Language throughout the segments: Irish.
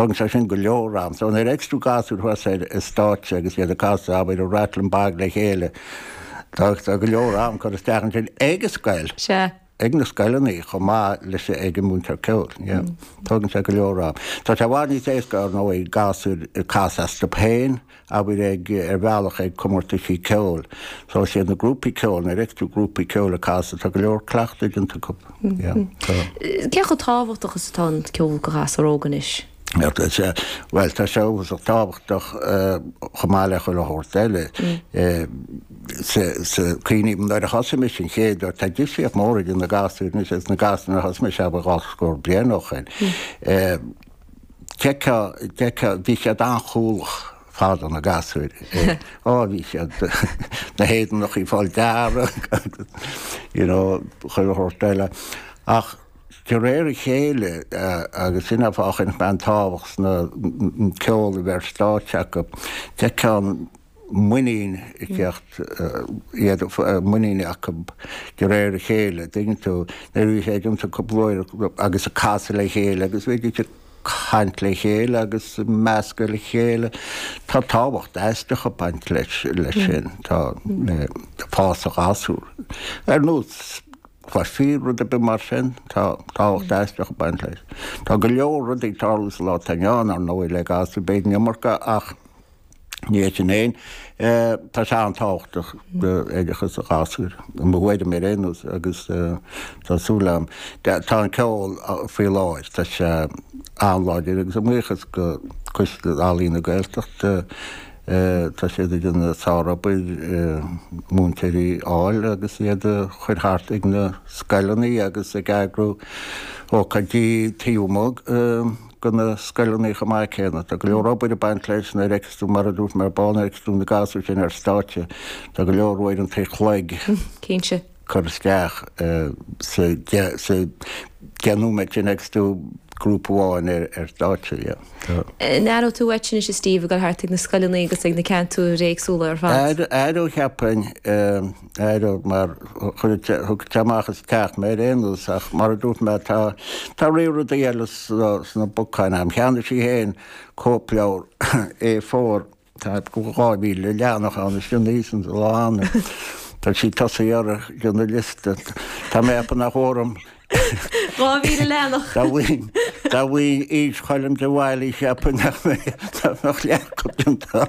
Tógann sé sin go leor am. So nuair a fheiceas tú gasúir thuas ar an stáitse agus iad ag casadh, abair, an Rattlin' Bog le chéile, tá go leor am curtha isteach ansin ag an scoil, ag na scoileanna chomh maith leis ag an múinteoir ceoil. Tógann sé go leor am. Tá sé i bhfad níos éasca, ar ndóigh, gasúir ag casadh astu féin, abair ag, ar bhealach, ag comórtaisí ceoil. So is iad na grúpaí ceoil, nuair a fheiceas tú grúpaí ceoil ag casadh, tá go leor cleachtaidh déanta acu. Yeah, tá. Cé chomh tábhachtach is atá an ceol go ghasúr óg anois? Bhuel, tá sé uafasach tábhachtach chomh maith le chuile shórt eile. Cuimhním nuair a thosaigh mise an chéad uair, tá difríocht mhór idir na gasúir anois agus na gasúir nuair a thosaigh mise abair dhá scór bliain ó shoin. d'fheicfeá, d'fheicfeá, bhí siad an-chúthalach fadó, na gasúir. Ó, bhí siad, na héadanachaí ag fáil dearg agus, you know, chuile shórt eile. Ach de réir a chéile, agus sin é fáth a chuir mé an tábhacht sna, an ceol a bheith ar stáitse acu, d'fheicfeá an, muinín ag tíocht, an muinín acu de réir a chéile, tuigeann tú, nuair a bhí sé ag iontú cúpla uair agus ag casadh le chéile agus bhíodh siad ag caint le chéile agus ag meascadh le chéile. Tá tábhacht aisteach ag baint leis sin, tá, le fás an ghasúir. Ar nós cluichí rud ar bith mar sin, tá tábhacht aisteach ag baint leis. Tá go leor rudaí ag tarlú sa lá atá inniu ann, ar ndóigh, le gasúir, b'fhéidir an iomarca ach, Níl a fhios agam féin. Tá sé an-tábhachtach do oideachas an ghasúir, mo thuairim ar aon nós, agus tá súil agam. Tá an ceol faoi láthair, tá sé an-láidir agus a mbuíochas go Coiste Ealaíon na Gaeltachta tá siad ag déanamh sárobair múinteoirí a fháil agus iad a chuir thart ag na scoileanna agus ag eagrú ócáidí taobh amuigh go na scoileanna chomh maith céanna. Tá go leor obair ag baint leis, nuair a fheiceas tú, mar a dúirt mé ar ball, nuair a fheiceas tú na gasúir sin ar stáitse, tá go leor uaireanta an chloig Cinnte. curtha isteach sa deich nóiméad sin a fheiceas tú grúpa amháin ar stáitse, yeah. Tá. Aireoidh tú uait sin, is é Steve, ag dul thart ag na scoileanna agus ag na ceantair éagsúla ar fad? Aireoidh, cheapfainn. Aireoidh mar chuir, thug sé amach as teach mé ar aon nós, ach mar a dúirt mé, tá, tá riar rudaí eile sna bacáin agam. Cheannaigh sí féin cóipleabhar A4, tá dhá mhíle leathanach ann, is ionadh iad san, lá annaí. Tá sí ag tosaí orthu, déanamh liosta. Tá mé ag ceapadh nach bhfuair an. Dhá mhíle leathanach! Dá bhfaighinn, dá bhfaighinn aois Choilm de Bhailís, cheapfainn nach mbeadh, nach mbeadh leath acu déanta.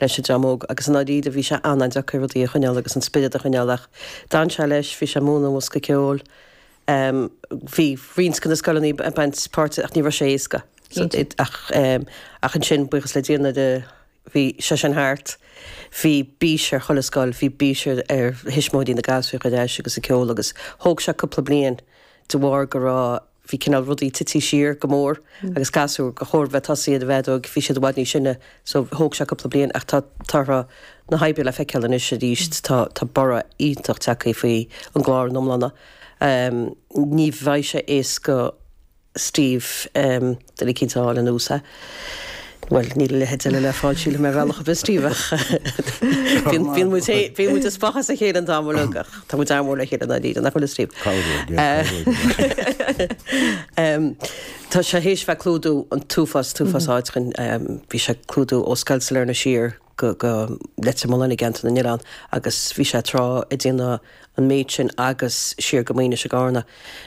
leis an dream óg agus i ndáiríre bhí sé an-an-deacair rudaí a choinneáil agus an spiorad a choinneáil ach d'fhan sé leis, bhí sé ag múineadh an bhosca ceoil, em bhí roinnt de na scoileanna ag baint páirte ach ní raibh sé éasca ach em ach ansin buíochas le Dia nuair a bhí sé sin thart bhí bís ar chuile scoil, bhí bís ar ar thuismitheoirí na gasúir a fháil ar ais agus an ceol agus thóg sé cúpla bliain de bharr go raibh, bhí cineál rudaí tití siar go mór agus gasúir gur chóir bheith tosaigh iad a bheith óg, bhí siad i bhfad níos sine so thóg sé cúpla bliain ach tá torthaí na hoibre le feiceáil anois arís, tá tá borradh iontach tagthaí faoi an gclár ina iomláine. Ní bheidh sé éasca Steve. Duine eicínt a fháil ina áit. Bhuel, níl a leithéid eile le fáil, sílim, ar bhealach ar bith, Steve, ach bíonn muid ag spochadh as a chéile an t-am uilig, ach tá muid an-mhór le chéile i ndáiríre, nach bhfuil, a Steve? Tá sé théis bheith ag clúdú an t-uafás, t-uafás áit, bhí sé ag clúdú ó scoil Sailearna siar go Leitir Mealláin i gceantar na nOileán agus bhí sé tráth ag déanamh an méid sin agus siar go Maínis i gCarna.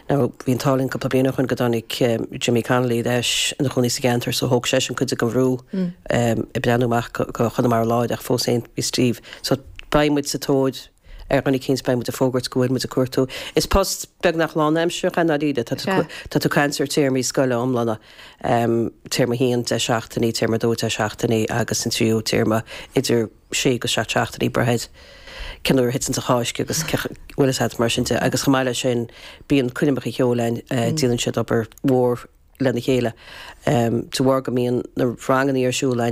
Now, bhí an t-ádh linn cúpla bliain ó shoin go dtáinig Jimmy Connolly ar ais ina chónaí sa gceantar so thóg seisean cuid den bhrú ag breathnú amach go Chonamara Láir ach fós féin bhí Steve so beidh muid sa tóir ar dhuine eicínt, beidh muid ag fógairt go bhfuil muid ag cuartú. Is post beagnach lánaimsearach é i ndáiríre, tá tú ag caint ar théarmaí scoile iomlána. Téarma 1, 10 seachtainí, Téarma 2, 10 seachtainí, agus an tríú téarma idir 6-7 seachtainí, braitheann cén uair a thiteanns an Cháisc agus a bhfuil fhios agat, mar sin de, agus chomh maith le sin bíonn coirmeacha ceoil ann, déanann siad obair mhór lena chéile de bharr go mbíonn na rangannaí ar siúl ann.